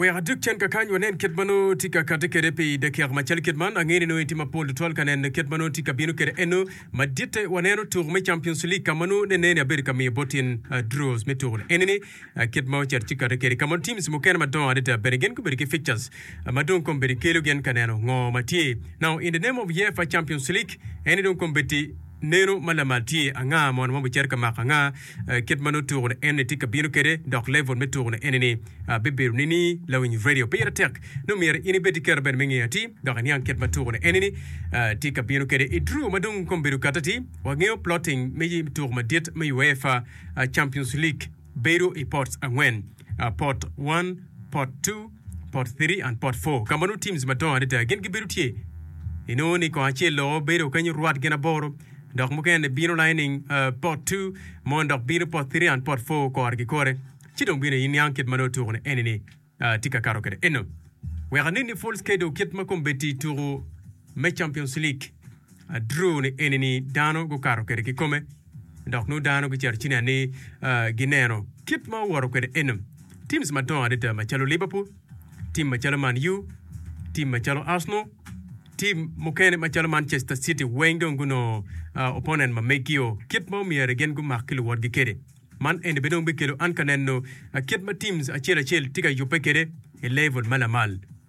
Wek adug cen kakany wanen kit ma nongo tye ka kati kede pi dakika macalo kit man. Angeyo ni nongo itye mapol tutwal ka neno kit ma nongo tye ka bino kede eno. Maditte waneno tuku me Champions League ka ma nongo ne neni abedo ka miyo bot in draws me tuku ni eni-ni kit ma ocito tye kati kedi ka ma teams mukene madongo adada bene gin gubedo ki fixtures ma dong kong bedi kelo gin ka neno ngo ma tye. Now in the name of UEFA Champions League eni dong kong bedi neno ma lamal tye anga mono ma obicito ka mako anga. Kit ma nongo tuko ni eni tye ka bino kwede, dok level me tuko ni eni ni bibedo nini lawiny radio pe ite tek. Nongo myero in ibed ki kero bene me ngeyo ati dok iniang kit ma tuko ni eni ni tye ka bino kwede. I Drew ma dong kome bedo kati ati, wangeyo plotting me tuko madit me UEFA Champions League bedo i pots angwen, Pot one, Pot two, Pot Three and Pot Four, ka ma nongo teams madongo adada gin gibedo tye, inongo ni kong acel loko bedo kenyo rwat gin aboro, dok mukene bino lining uh, Pot Two, mon dok bino Pot Three and Pot Four kore ki kore. Ci dong bino iniang kit ma nongo tuku-ni eni-ni uh, tye ka kato kwede eno. Wek anenni full schedule kit ma kombeddi tuku me Champions League, uh, draw-ni eni-ni dano gukato kwede ki kome. Dok nongo dano gicito ci nen ni gineno kit ma owoto kwede Enem. Teams madongo adada macalo Liverpool, tim macalo Man U, tim macalo Arsenal, tim mukene macalo Manchester City weng dong gunongo opponent ma megi-o kit ma omyero gin gumak ki luwotgi kwede. Man eni bene dong bikelo an ka neno kit ma teams acel acel tye ka yubbe kwede i level ma lamal.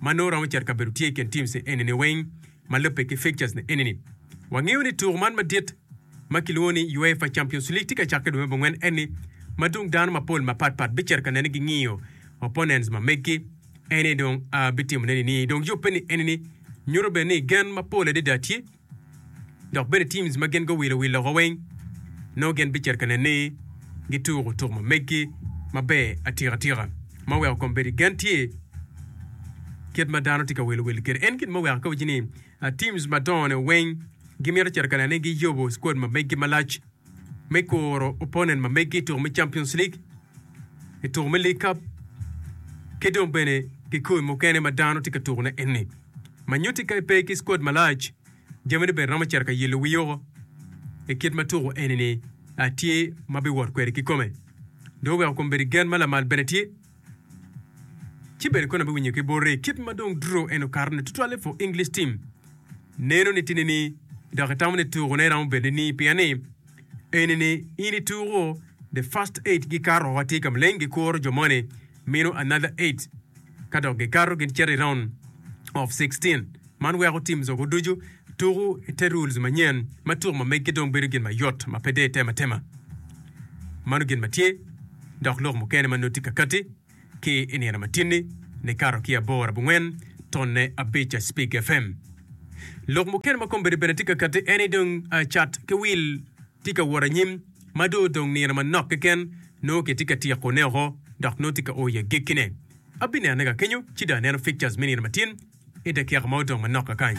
ma nongo romo cito ka bedo tye i kin teams enini weng ma lubbe ki fixtures ni enini. Wangeyo ni tuku man madit ma kilwongo ni UEFA Champions League tye ka cakke dwe me bongwen enni ma dong dano mapol mapat pat bicito ka nene gingiyo opponents ma meggi enni dong a bitimone nini dong yubbe ni enini nyuto bene ni gen mapol adada tye Dok bene teams ma gin guwilo wi loka weng nongo gin bicito ka nen ni gituko tuk ma meggi maber atika tika ma weko kom bedo gen tye kit ma dano tye ka wilo wil kede. En gin ma weko ka waci ni teams madongo ne weng gimito cito ka nen ni giyobo squad ma meggi malac. me kuro opponent ma megi i tuko me Champions League, i tuko me League Cup ki dong bene kikoi mukene ma dano tye ka tukone enni. Ma nyutti ka ipe ki squad malac, jamini bene romo cito ka yelo wii oko i kit ma tuko enini tye ma biwot kwede kikome. Dong weko kom bedi gen ma lamal bene tye. Ci bene Connor biwinyo ki bote kit ma dong Drew en okato ne tutwalle for English team. Neno ni tini ni dok itamo ni tuko ne romo bedo ni pien ni eni ni in ituko the first eight gi kato wa tye ka maleng gi kuro jo moni mino another eight ka dok gi kato gin cito i round of sixteen. Man weko tim zogo ducu tuku i te rules manyen ma tuku ma meggi dong bedo gin mayot ma pe deyo tema tema. Mano gin ma tye dok lok mukene ma noti kakati ki i nino matini ni kato ki abor abongwen tonne abica Spig FM. Lok mukene ma kombeddi bene tye kakati en ni dong cat ki wil tye ka wot anyim ma dong odong nino manok keken nongo kitye ka tyeko ne oko dok nongo tye ka o i agekkine. Abinenone ka kenyo ci dong aneno pictures me nino matin i dakika ma odong manok kakany.